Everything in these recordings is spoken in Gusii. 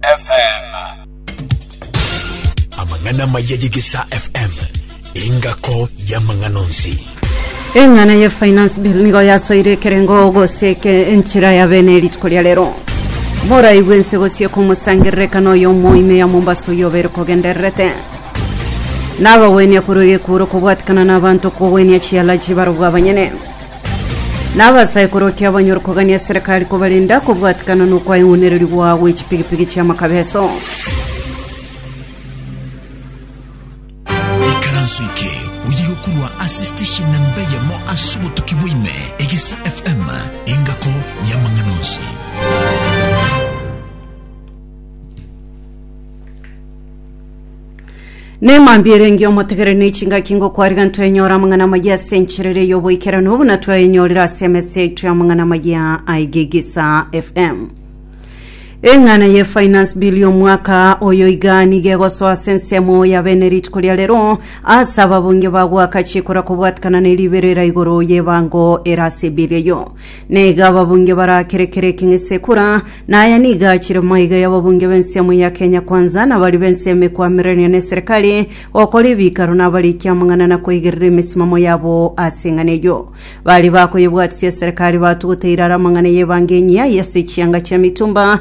FM. Amang'ana amaya ye Gesa FM, engako y'amang'ana onsi. eng'ana ye finance bill nigo yasoire ekerengo gose eke enchera ya bene erituko ria rero morai bwense gosie komosangererekana oyo omoime ya mombasa oyo obere kogendererete nabagwenia korwa egekuuro kobwatikana na abanto kogwenia chialaji barobwo abanyene Nabasaikoro ki abanyore kogania eserekari kobarenda kobwatikana nokwaeng'unererigwa gwe chipigipigi chi'amakabeso? ikaranso eke oyire okorwa ase station namba eyemo ase obotuki bwaime egisa fm engako y'amang'ana onsi Nemambia erenge omotegere ne chingaki ngokwariga ntwenyora amang'ana amaya ase encherere y'oboikeranu buna twayenyorire ase emesa yaito y'amang'ana amaya aigigisa FM. Eng'ana ye finance bill y'omwaka oyo iga niga egosoa ase ensemo ya bene rituko ria rero ase ababunge bagwaka chikura kobwatikana ne riberera igoro y'ebango era ase bill eyo. Na iga ababunge barakerekere ekeng'esekura, na aya nigo achire maiga y'ababunge b'ensemo ya Kenya Kwanza, na baria b'ensemo ekwamiranire neserekari, gokora ebikaro na abarikia amang'ana na koigerera emesimamo yabo ase eng'ana eyio. Baria bakoyebwatisia eserekari batuguteire are amang'ana y'ebango enyia aya ase chianga chia mitumba,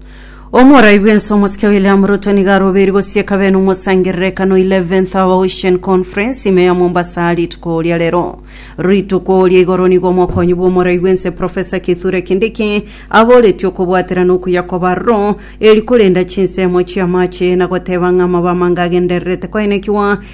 Omorai bw'ense omosike William Ruto nigo arobeiri gosieka bene omosangererekano 11th Hour Ocean Conference ime ya Mombasa rituko oria rero. Rituko oria igoro nigo omokonyi bw'omorai bw'ense Professor Kithure Kindiki aboretie okobwatera na okuya kw'abaroro eri korenda chinsemo chi'amache na goteba ng'a amabamanga agendererete koenekigwa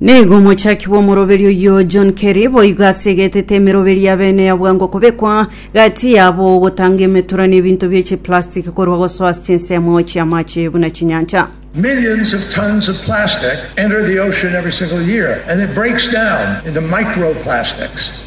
Nigo omochaki bw'omoroberi oyio John Kerry boigo asegetete emeroberi ya bene ya bwango kobekwa gati yabo ogotanga emetura na ebinto bie chiplastic korwa gosoa ase chinsemo chi'amache buna chinyancha. Millions of tons of plastic enter the ocean every single year, and it breaks down into microplastics.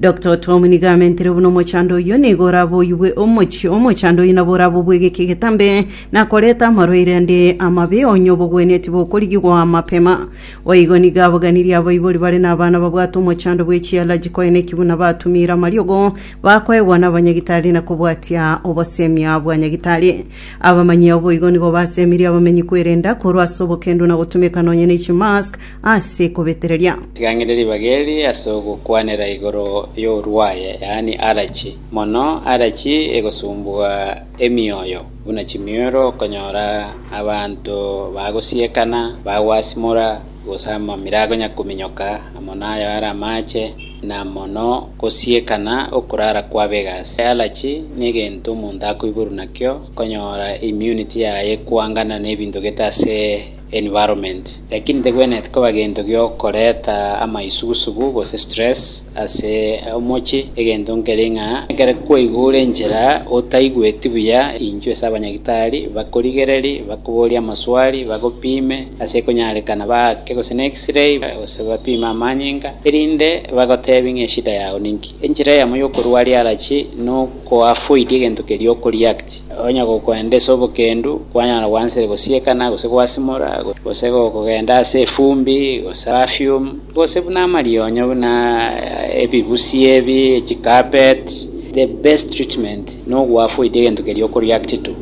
Doctor Tom nigo amentere buna omochando oyio, nigo orabe oyigwe omochie omochando oyio nabo orabe obwegeke egetambe, na koreta amarwaire ande amabe, onye obogwenetie bokorigigwa mapema. Boigo nigo abaganirie abaibori bare nabana babwate omochando bwe chialaji koe neki buna batumire amariogo, bakoegwa nabanyagitari na kobwatia obosemia bwa nyagitari. Abamanyi ao boigo nigo basemirie abamenyi kwerenda korwa ase obokendu na gotumeka nonye ne chimask ase kobetereria. Tigang'ire ribaga eri ase ogokwanera igoro y'orwaye, yaani arachi. Mono arachi egosumbugha emioyo, buna chimioro okonyora abanto bagosiekana, bagwasimora, gose amamira agonyakominyoka amo nayo are amaache, na mono gosiekana okorara kwabega ase arachi negento omonto akoiborwa nakio, okonyora immunity yaye ekoangana nebinto gete ase environment, lakini tegwenerete koba gento giokoreta amaisugusugu gose stress ase omochie, egento nkere ng'a ekero kwaigure enchera otaigweti buya, inchwe ase abanyagitari bakorigereri, bakoborie amaswali, bagopime ase ekonyarekana baake gose ne X-ray gose bapime amanyinga, erinde bagotebie ng'a eshida yao ninki. Enchera eyemo yokorua riarachi nokoavoid egento keria okoreact. Onye gokwenda ase obokendu, kwanyara gwansire gosiekana, gose gwasimora, gose gokogenda ase efumbi, gose perfume, gose buna amarionyo buna ebibusi ebi, chicarpet, the best treatment nogoafoid egento keria okoreact to.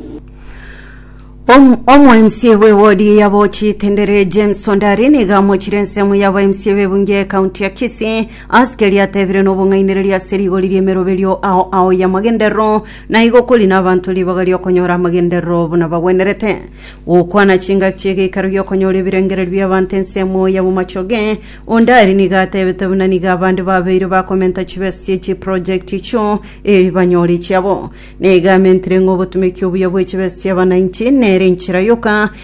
Omo mca bwe ward ya Bochi Tendere James Ondari niga amochire ensemo ya ba mca be bunge ya county ya Kisii ase keria atebire nobong'ainereria ase rigori riemeroberio ao ao ya magenderero Na igo kori nabanto ribaga ri'okonyora amagenderero buna bagwenerete, gokwana chingaki chi'egeikaro gi'okonyora ebirengererio bi'abanto ensemo y'amamachoge. Onde aria nigo atebete buna nigo abande babeire bakomenta chibesa chie chiproject echio eri banyore echiabo. Nigo amentire ng'a obotumeki obuya bwe chibesa chi'abananchi nere enchera yoka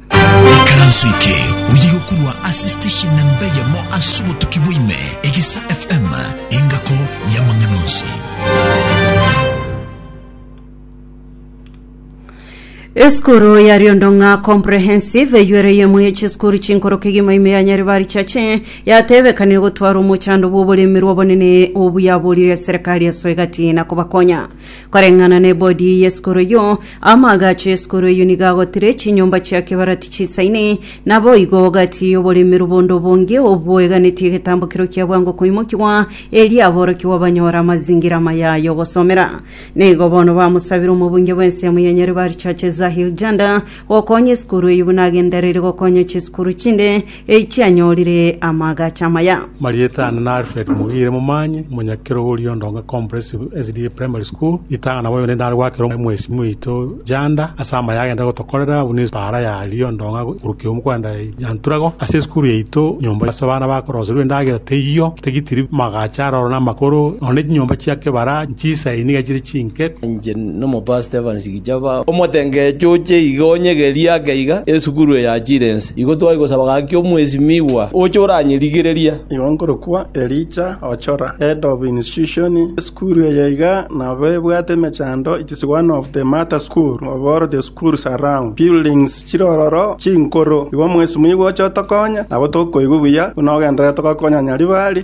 Ekaranso eke oye gokurwa ase station na mbeyemo ase obotuki bwaime egisa FM engako y'amang'ana onsi. Esukuru ya Riondong'a Comprehensive eyuere yemo ye chisukuru chinkoro kegima ime ya Nyaribari Chache yatebekania gotwara omochando bw'oboremi rw'obonene obuyaborire serikali esoe gati na kobakonya Koreng'ana nebodi y'esikuru eyio, amaagacho y'esikuru eyio nigo agotire echinyomba chia kebarati chisaine, naboigo gati y'oboremerwa bonde obonge obweganetie egetambo kireo kia bwango koimokigwa, erio aborokigwa banyore amazingira amaya y'ogosomera. Nigo bono bamosabire omobunge bw'ensemo ya Nyaribari Church Zahir Janda gokonya esikuru eyio buna agendereire gokonya chisukuru chinde, Eichi anyorire amaagacho amaya. Marieta ane na Alfred Mugire Momanyi, omonyakerogoria o Ndonga Comprehensive SDA Primary School. Ritang'ana nabo yonde nare gwakera omwesimi oito Janda ase amaya agenda gotokorera buna epaara ya Rio Ndonga korwa kiumu kwenda Nyanturago. Ase esukuru yaito nyomba ase abana bakoroserwa endagera teiyo, tigitiri, amaagacho aroro na amakoro, nonya ne chinyomba chia kebara nchisae niga chire chinke. Inche nomopastor Evans Jehova. Omotengecho oche iga onyegerie ake iga esukuru eyachire ense. Igo twai gosaba gaki omwesimigwa oche oranyerigereria. Igo nkorokwa Elijah Ochora, Head of Institution, Esukuru eye iga nabo ebwate emechando, it is one of the mata school of all the schools around, buildings chire ororo chinkoro. Igo omwesimigwa oche otokonye, nabo tokoigwa buya buna ogendererete gokonyanya ribari.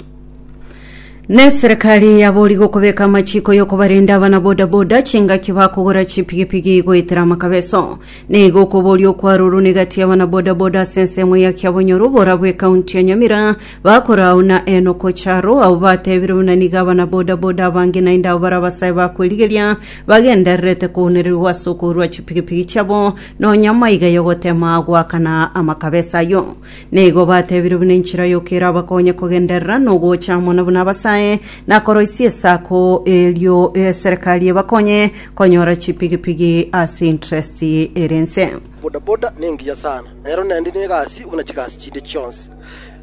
Neserekari yabori gokobeka amachiko yokobarenda abana bodaboda chingaki bakogora chipigipigi goetera amakabeso. Neigo okoboria okwaruru negati abana bodaboda ase ensemo ya Kiabonyoru borabu ekaunti ya Nyamira bakora au na Enoko Charo abwo batebire buna nigo abana bodaboda abange naende abo bare abasae bakwerigeria bagendererete kounererigwa ase okourwa chipigipigi chiabo nonya maiga yogotema goakana amakabeso ayio. Nigo batebire buna enchera yoka erabakonye kogenderera nogocha amo na buna abasae nakoroisia esako, erio eserekari ebakonye konyora chipigipigi ase interest ere ense. Bodaboda nengiya sana, nero nendi negasi buna chigasi chinde chionsi.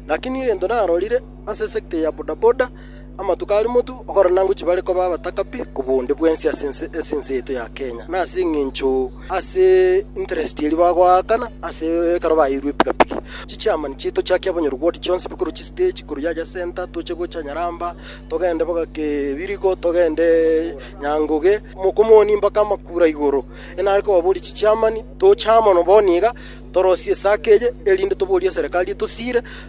Lakini egento narorire ase sector ya bodaboda, Amatuko a Rimotu, Abakoranangochi bare koba abatakabi kobua onde bwensi ase ense ase ense yaito ya Kenya, na ase engencho ase interest eria bagoakana ase ekero baeirwe epikapiki. Chichiamani chiaito chiakia bonyoru bw'odi chionsi bikorwa chistage korwa yacha center toche gocha Nyaramba, togende mpaka Kebirigo, togende Nyangoge, Mokomoni mpaka Makura igoro. Enare kobaboria chichiamani, toche amo nabo niga torosie esako eye erinde toborie eserekari etosiire,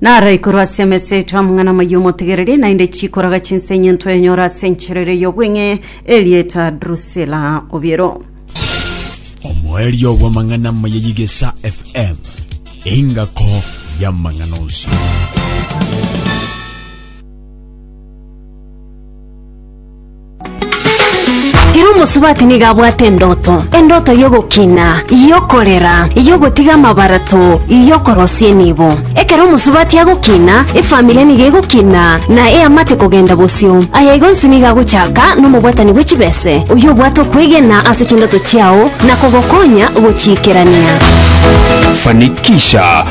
Naro ikoru ase emesa eto amang'ana amaya omotegereri, naende chikoraga chinsa enyinto enyoro ase enchera eria y'obweng'e, erieta Drusila. Obiero. Omoerio bw'amang'ana amaya y'Igesa FM, engako y'amang'ana onsi. Ere omosubati nigo abwate endoto, endoto y'ogokina, y'okorera, y'ogotiga amabarato, y'okorosia enibo. Ekero omosubati agokina, efamiri nigo egokina, na eamate kogenda bosio. Aya igo onsi nigo agochaka nomobwatani bwe chibese, oyio obwate okwegena ase chindoto chiao na kogokonya gochiikerania. Fanikisha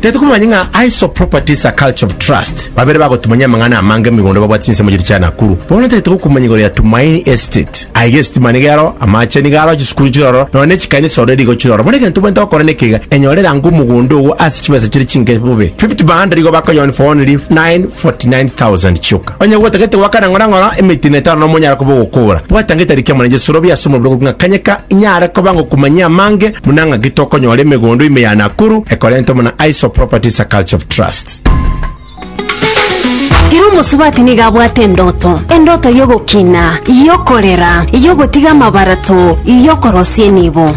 Tari tokomanya ng'a Aiso Properties a Culture of Trust babere bagotumanyia amang'ana amange mumigunda babwate chinsemo chiria chia Nakuru. Bono tari togokumanya igoro ya Tumaini Estate. Aiga esitima nigo ero, amache nigo aro, chisukuru chire ororo, nonya ne chikanisa ororo erigo chire ororo. Bono egento obwenerete gokora neke iga, enyore rango omogunda ogo ase chibesa chire chinke bobe. Fifty Banda rigo bakonyoa only for only 949,000 chioka. Onye gwotagete goakana ng'orang'ora emetino etano na omonyara koba ogokora, bwata ng'itari ekiamo na egesorobio ase omobere ogokwa ng'a kanyeka inyare koba ngokumanyia amange buna ng'aki tokonyora emegondo ime ya Nakuru ekorentwamo na Aiso Properties a Culture of Trust. Ere omosubati nigo abwate endoto, endoto y'ogokina, y'okorera, y'ogotiga amabarato, y'okorosia enibo.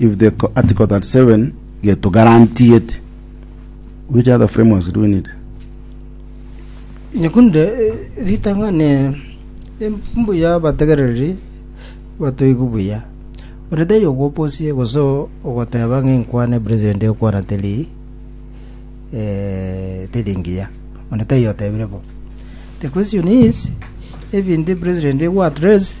if the article 37 geto guaranteed which other frameworks do we need nyekunde eh, ritang'ani eh, mbuya abategereri batoigwe buya ore taiyo ogoposie gose ogoteba ng'a enkwana president ekwana teri eh, teri ngiya ore taiyo otebire bo the question is ebinto president ego address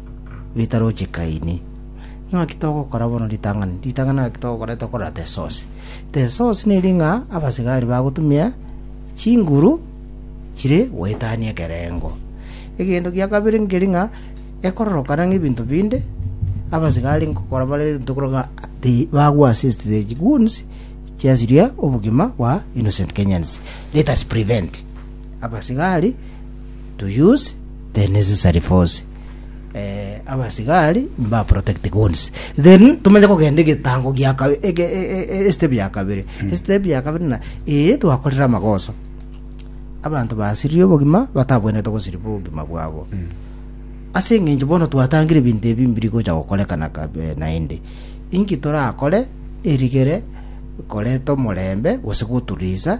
ritaroche Kaini. Naki togokora bono ritang'ani? Ritang'ani naki togokora tokorora Tesosi. Tesosi neri ng'a abasigari bagotumia chinguru chire goetania ekerengo. Egento gia kabere nkeri ng'a ekororokana ng'ebinto binde, abasigari nkogokora bare tokora ng'a bagwo assist the goons chiasiria obogima bwa innocent Kenyans. Let us prevent abasigari. to use the necessary force eh, abasigari mba protect guns then tumenye kogenda egetango gia kabe- ege- e- e- e- estep ya kabere estep ya kabere na ee twakorire amagoso abanto basirie obogima batabwenerete gosiriba obogima bwabo ase eng'encho bono twatangire ebinto ebi mbiri gocha gokorekana kabe naende inki torakore erigere koreta omorembe gose goturisa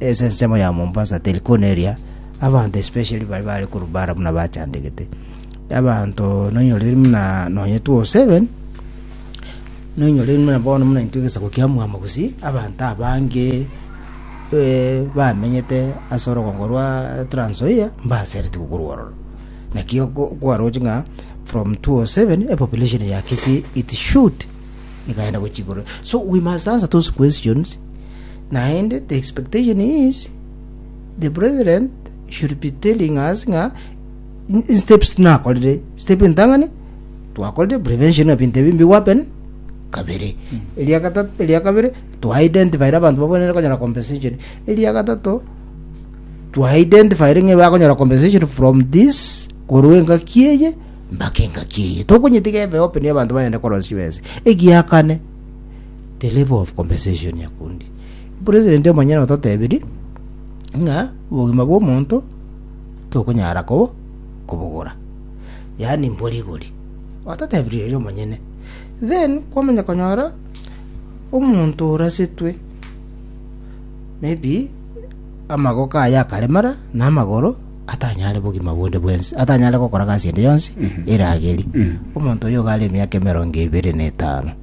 Ase ensemo ya Mombasa teri kona eria, abanto especially baria bare korwa bara buna bachandegete. Abanto nonyorire buna nonye 207, nonyorire buna bono buna intwe egesaku kia mwamo gusii, abanto abange eh, bamenyete ase orogongo rwa Trans Nzoia, mbasereti gokorwa ororo. Naki oko kwaroche ng'a from 207, epopulation ya Kisii it should ekaenda gochia igoro. So we must answer those questions, Naende the expectation is the brethren should be telling us ng'a in steps nakorire step entang'ani twakorire prevention of binto ebi mbigo happen kabere eria gatatu eria kabere to identify abantu babonere konyora compensation eria gatato to identify ng'e bakonyora compensation from this korwa engaki eye mpaka engaki eye tokonyetiga ebe open abanto bagende korosia bese egiakane the level of compensation ya kundi. President omonyene ototebirie ng'a obogima bw'omonto tokonyara kobo kobogora yaani mbori igori ototebirie eri omonyene then kwamanya konyora omonto orasetwe maybe amagoko aye akaremara na amagoro atanyare bogima bonde bwensi atanyare gokora gasi ende yonsi erageri omonto oyo iga are emiaka emerongo ebere na etano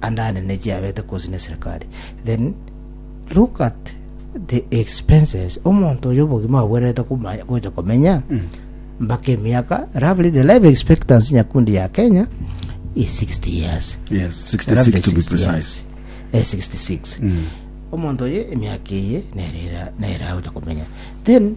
andane nechiabete kosi neserikali then look at the expenses omonto oyo obogima abwererete komanya gocha komenya mm. mpaka emiaka roughly the life expectancy nyakundi ya kenya is 60 years yes 66 to be precise eh, 66 mm. omonto oyo emiaka eye nerera nerera gocha komenya then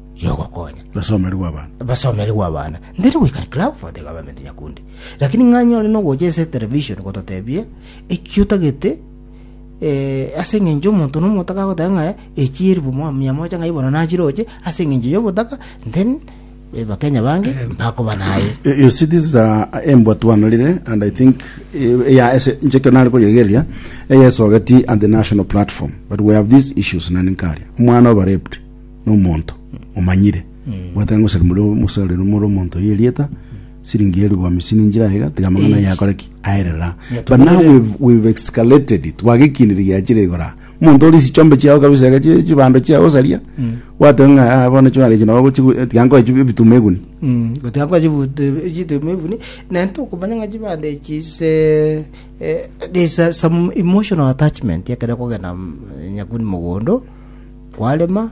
y'ogokonya. Basomeri gw'abana. Basomeri gw'abana. Ndiri goika club for the government Nyakundi. Lakini ng'a nyore nogocha ase television gototebia eki otagete eh, ase eng'encho omonto nomo otagagoteba ng'a echi elfu mo- mia moja ng'a ibono nachiroche ase eng'encho y'obotaka then eh, bakenya bange bakoba naye You you see, this is a, embwa twanarire, and I think eh, yeah, ese ncheke nari koyegeria eyesogeti and the national platform, but we have these issues nani nkaria omwana oba raped nomonto omanyire, bwatera ngosera muri omosareri omoro omonto oyo erieta siringi elfu hamsini njira aiga, tiga amang'ana aye akore ki aerera. But now we've, we've escalated it, twagekinire giachire igoro aa. Omonto ore chichombe chiao kabisa iga chi- chibando chiao osaria, gwateba ng'a "Ah, bono chibando echi nabo gochigu, eh, tiga nkoe chibe ebituma eguni. gotiakwa chituma ebuni naende tokomanya ng'a chibande echi se eh, there's a- some emotional attachment ekero okogenda mm, nyakuni mogondo kwarema